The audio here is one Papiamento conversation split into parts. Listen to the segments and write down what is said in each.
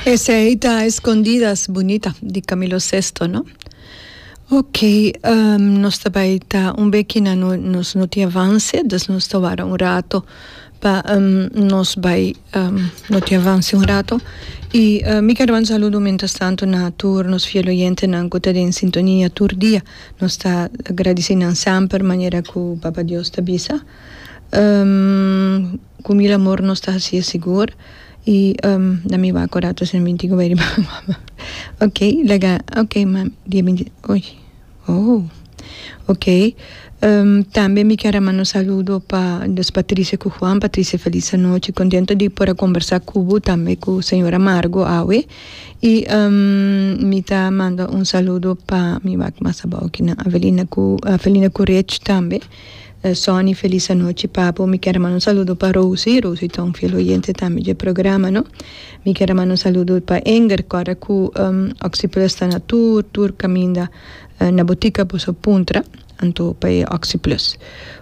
Esei ta Escondidas Bunita di Camilo Sesto, no? Ok, um, nos ta bai ta un beki na no, nos no ti avance, dus nos ta wara un rato pa um, nos bai um, no ti avance un rato. Y uh, mi ker ban saludo mientras tanto na tur nos fiel oyentenan cu ta den sintonia tur dia. Nos ta agradeci nan semper manera cu Papa Dios ta bisa. Um, Cu mi ramor nos ta hacié sigur y na mi waco rato si no mi tin cu bay riba guagua. Ok laga ok mami dia binti oye oh ok tambe mi kier a manda un saludo pa nos Patricia cu Juan Patricia feliz anochi contento di por a conversa cu bo tambe cu señora Margo awe y mi ta manda un saludo pa mi wak mas abao kinan Avelina cu Avelina cu Rech tambe. Sonny felis anochi papo mi kier a manda un saludo pa Rosie, Rosie ta un fiel oyente tambe dje programa no, mi kier a manda un saludo pa Enger kòrda ku Oxi Plus ta na tur tur kaminda na butika boso puntra anto pa e Oxi Plus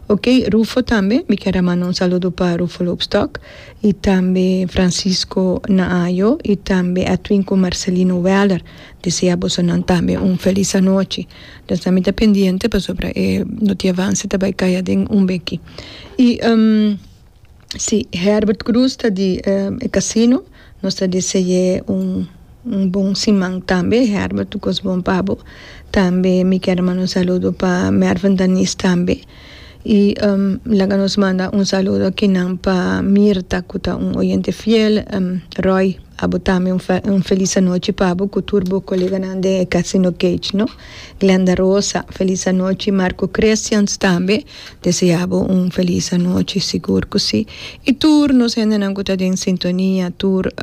ok Rufo tambe mi kier a manda un saludo pa Rufo Loopstok i tambe Francisco Naayo i tambe Edwin ku Marcelino Weller desea boso nan tambe un felis anochi. Pensa mi ta pendiente pasobra e notia avanse ta bai caya den un beki. Y si Herbert Cruz ta di e casino nos ta dise ye un un bon siman tambe Herbert un cos bon pa bo tambe mi kier a manda un saludo pa Mervin Danis tambe. Y laga nos manda un saludo akinan pa Mirta cu ta un oyente fiel. Roy, abo tambe un un feliz anochi pa bo cu tur bo coleganan den e Casino Cage, no. Glenda Rosa, feliz anochi. Marco Christians tambe desea bo un feliz anochi, sigur cu si. Y tur nos hendenan cu ta den sintonia, tur.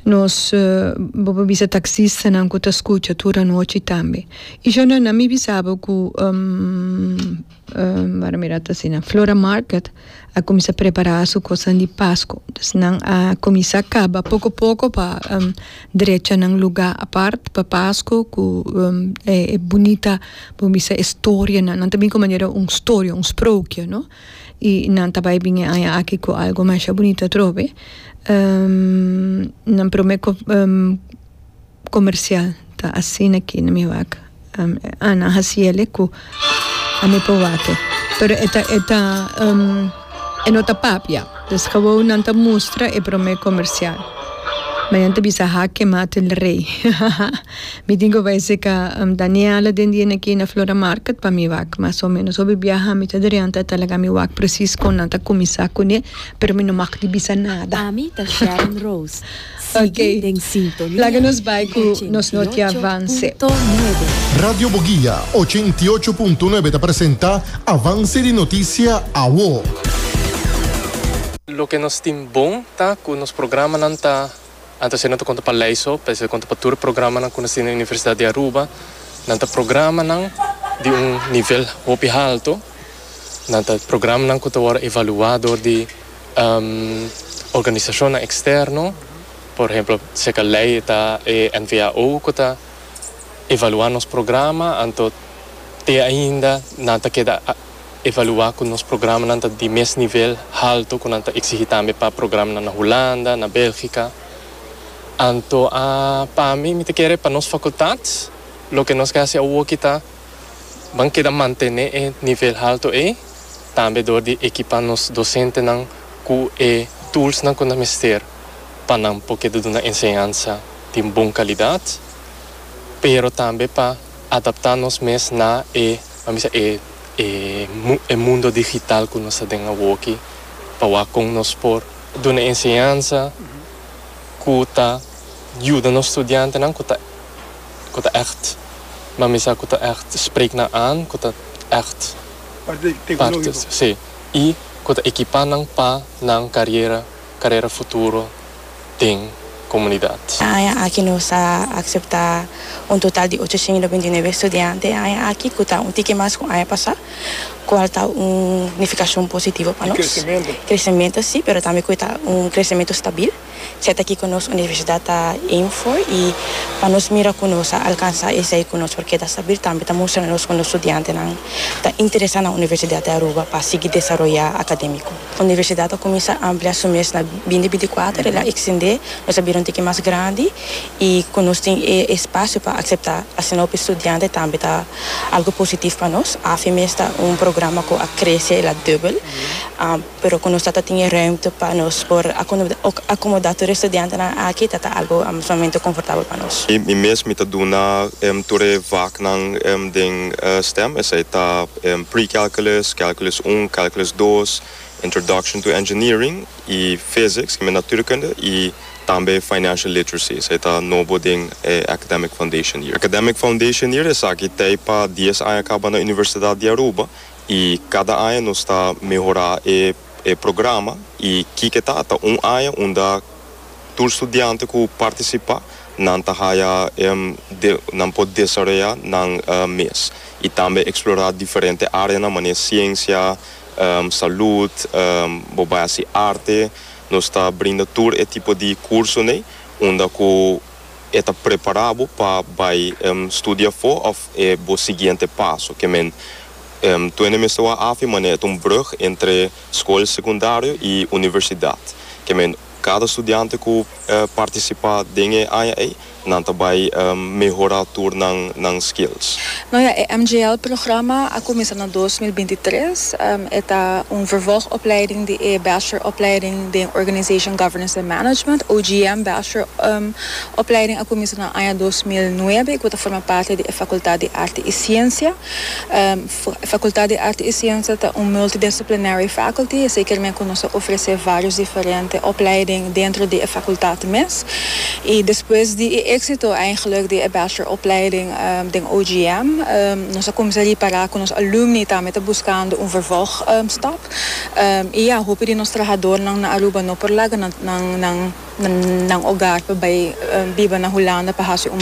Nos bo por bisa taxistanan ku ta skucha tur anochi tambe. I shon nan mi bisabo ku wak a mira ta asina Flora Market a kuminsá prepará su kosnan di Pasko. Entonces nan a kuminsá kaba poko poko pa drecha nan lugá apart pa Pasko ku e bunita bo bisa historianan. Nan ta bin ku manera un storia, un sproukje, no. y nan ta bay bini aña aki cu algo masha bunito atrobe nan prome comercial ta asina aki na mi wak Ana Haciele cu ami por wake pero e ta e ta e no ta papia pues gawou nan ta mustra e prome comercial ma nan ta bisa hake mate el rey. Mi tin cu bay si ca ta ni hala den di enaki na Flora Market pa mi wak. Mas o menos hopi biaha mi ta dreanta ta laga mi wak precies con nan ta cuminsa cune, pero mi no mag di bisa nada. Ami ta Sharon Rose. Sigui den sintonia. Laga nos bay cu nos notia Avance. 88.9. Radio Boguia ochenta i ocho punto nuebe ta presenta Avance di Noticia Awo. Loke nos tin bon ta cu nos programanan ta. Anto asina ta konta pa lei so, p'esei ta konta pa tur e programanan ku nos tin den Universidat di Aruba. Nan ta programanan di un nivel hopi haltu. Nan ta programanan ku ta wòrdu evaluá dor di organisashonnan eksterno. Por ehemplo, seka lei e ta e NVAO ku ta evaluá nos programa, anto te ainda nan ta keda. evaluá ku nos programanan ta di mes nivel haltu ku nan ta eksigí tambe pa programanan na Hulanda, na Bèlgika. Anto a pa mi, mi ta kere pa nos fakultat loke nos ke hasi awoki ta ban keda mantené e nivel haltu ei, tambe dor di ekipá nos dosentenan ku e tulsnan ku nan mester pa nan por keda duna enseñansa den bon kalidat, pero tambe pa adaptá nos mes na e. Pa mi sa e e mundo digital ku nos ta den awoki pa wak kon nos por duna enseñansa ku ta yuda nos studiantenan ku ta ku ta ègt pa mi sa ku ta ègt sprek nan aan ku ta ègt parte si ku ta ekipá nan pa nan kariera carera futuro den comunidad. E aña aki nos a acepta un total di ochociento binti y nueve estudiante e aña aki cu ta un tiki mas cu aña pasa, cual ta un nificacion positivo pa nos. Di crecemento. Crecemento si, pero tambe cu ta un crecemento stabil. Siat aki cu nos universidad ta aim for y pa nos mira cu nos a alcansa esey cu nos por keda stabil tambe ta mustranan nos cu nos studiantenan ta interesa na Universidad di Aruba pa sigui desaroya academico. Universidat a kuminsá amplia su mes na bindi binti-kuater, el a ekstendé, nos a bira un tiki mas grandi i ku nos tin e espasio pa akseptá asina hopi studiante tambe ta algu positif pa nos. Afe mes ta un programa ku a krese, el a dubel, pero ku nos ta ta tin e rùmte pa nos por akomodá tur e studiantenan aki ta ta algu sumamente konfortabel pa nos. Mi mes mi ta duna tur e vaknan den stem, esei ta. Pre-calculus, Calculus un, Calculus dos, Introduction to Engineering y Physics, ki mi Natuurkunde, y tambe Financial Literacy, esaki ta nobo den e Academic Foundation Year. Academic Foundation Year esaki ta pa dies aña kaba na Universidad di Aruba y kada aña nos ta mehora e programa y kiko ta, ta un aña unda. tur studiante ku partisipá nan ta haya nan por desaroyá nan mes i tambe eksplorá diferente áreanan manera siensia, salud, bo bai hasi arte. Nos ta brinda tur e tipo di kursonan unda ku e ta prepará bo pa bai studi afó òf e bo siguiente paso ke men tuende mester wak hafi manera ta un brùg entre skol sekundario i universidat ke men Cada studiante cu participa den e aña ey, nan ta bay mehora tur nan nan skills. No ya, e MJL programa a cuminsa na dos mil binti tres. E ta un vervolgopleiding di e bacheloropleiding den Organization Governance and Management, OGM, bacheloropleiding a cuminsa na aña dos mil nuebe y cu ta forma parti di e Facultad di Arte y Ciencia. Facultad di Arte y Ciencia ta un multidisciplinary faculty, esey ker men cu nos a ofrece varios diferente opleiding dentro di e facultad mes. Y despues di e exito eigenlijk di e bachelor opleiding den OGM, nos a cuminsa ripara cu nos alumni tambe ta buscando un vervolg stap. Y ya, hopi di nos trahadornan na Aruba no por laga nan hogar pa bay biba na Hulanda pa haci un.